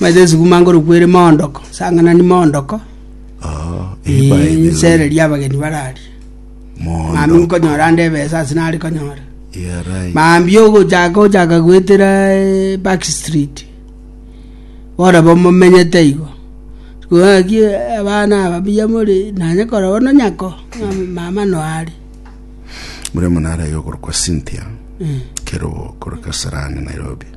Omanyete esuguma ngorokwa ere moondoko, sang'anani moondoko, Ii, nsererie abageni bararie. Mambia nkonyora ande ebesa ase nare konyora. Mambia ogochaka ochaka goetera eh, back street, bono abwo momenyete igo. Gaki abana aba mbuya more, nanye korora bono nyako, ng'a mama no are. Muremuna arayo okorokwa Cynthia, Eh. Kerogo, korwa Kasarani, Nairobi.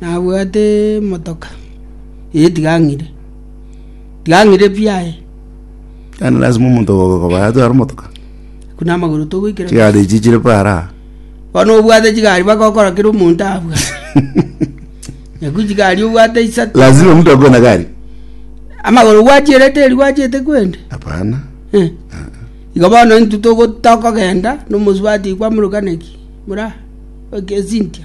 nabwate emotoka, eh tiga ng'ire, tiga ng'ire pi aye. Yaani lazima omonto ogo okoba yatwara omotoka. Buna amagoro togoikera. Chigari echi chire paara. Bono obwate chigari baka okora kera omonto abwate. Nyaku chigari obwate isato. Lazima mtu akuwe na gari. Amagoro gwachierete eri gwachete kwende. Hapana. Eh. Igo bono intwe togo tokogenda, nomosubati kwamuruka neki, mura, oke esintia.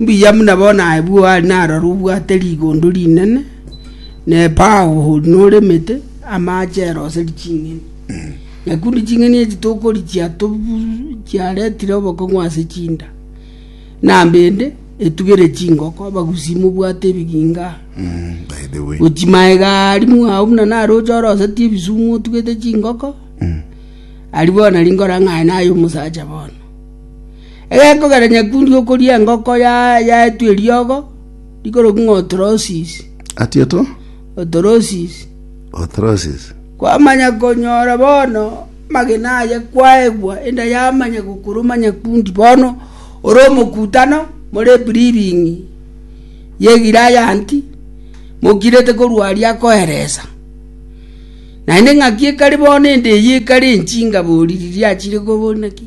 Mbuya buna bono aye bw'oare narore obwate rigondo rinene, na epaao noremete, amache eroseri ching'eni. Nakio nde ching'eni echi tokorichia tobu- chiaretire obokong'u ase chinda, na mbende etugere chingoko abagusi mobwate ebiginga aa. Mm, by the way. Gochi maega aria mwao buna nare oche oroseti ebisumu otugete chingoko, aria bono rinkora ng'a aye naye omosacha bono. Egekogera nyakundi okoria engoko yaetwe eriogo rikorokigwa ng'a Otrosis. Ati oto? Otrosis. Otrosis. Kwamanya konyora bono amagena aye kwaegwa enda yamanya gokuruma nyakundi bono ore omokutano more ebribing'i ye Gilayanti mokirete korwa aria akoeresa. Naende ng'aki ekari bono ende eyio ekare enchingabo oriri riachire kobonaki.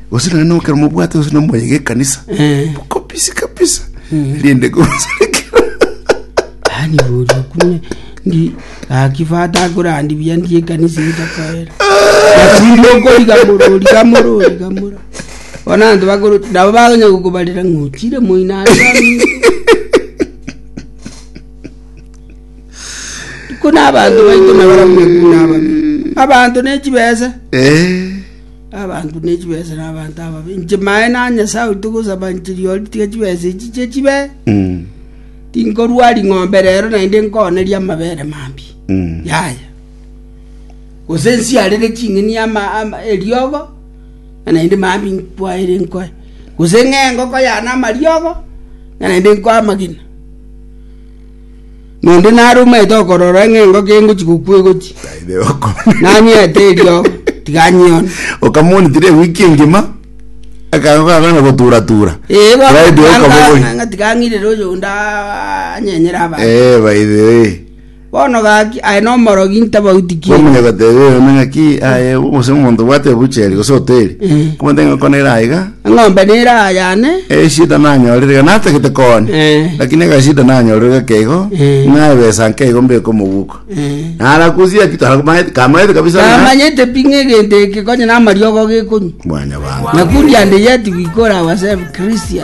Gose nonye nokera mobwate gose namoyega ekanisa Eh. kabisa kabisa rinde gose ani bori okune ndi akifata akorandi bia ndi ekanisa etakoera atindi okoriga morori gamorori gamora bona anto bakoro nabo baganya gokobarera ng'ochire moina ase aminto kuna abanto baito nabaramwe kuna abami abanto ne chibesa Eh. abanto ne chibesa na abanto ababe, inche Maene aa Nyasae oito gosaba nchirie ore, tiga chibesa echi chie chibe. Tinkorua ring'ombe rero, naende nkoonerie amabere mambia. Yaya. Gose nsiarere ching'eni ama- ama- eriogo, na naende mambia nkwaere nkoe. Gose ng'ee engoko yane amariogo, na naende nkoe amagena. Nonde nare omanyete okorora ng'a engoko engochia gokwa egochia, Taibe oko. nanyete eriogo, tiga nyione. Okamonitire ewiki engima, akanga kwagana gotura-tura. Ee, bono Taibe tiga oko nga- bogoria. ng'a tiga ng'irere oyonde a- anyenyere abanto. Eh, by the way. Bono gaki, aye nomorogi ntabauti ki? Kwamanya goteba eyo ning'aki aye gose omonto obwate ebucheri gose hoteli. Mm. Komoteba ng'a oko nere aiga. Eng'ombe neraayane. Eshida nanyorire iga natagete kooni Eh. lakini agashida nanyorire gake igo Eh. ng'a ebesa nke igo mbeke omoguko Eh. narakusia ki taramanyete kamanyete kabisa ng'a- Namanyete pi ng'a egento eke konye namariogo gekonywa. mwana bantu Nakundi and yet we call ourselves Christian.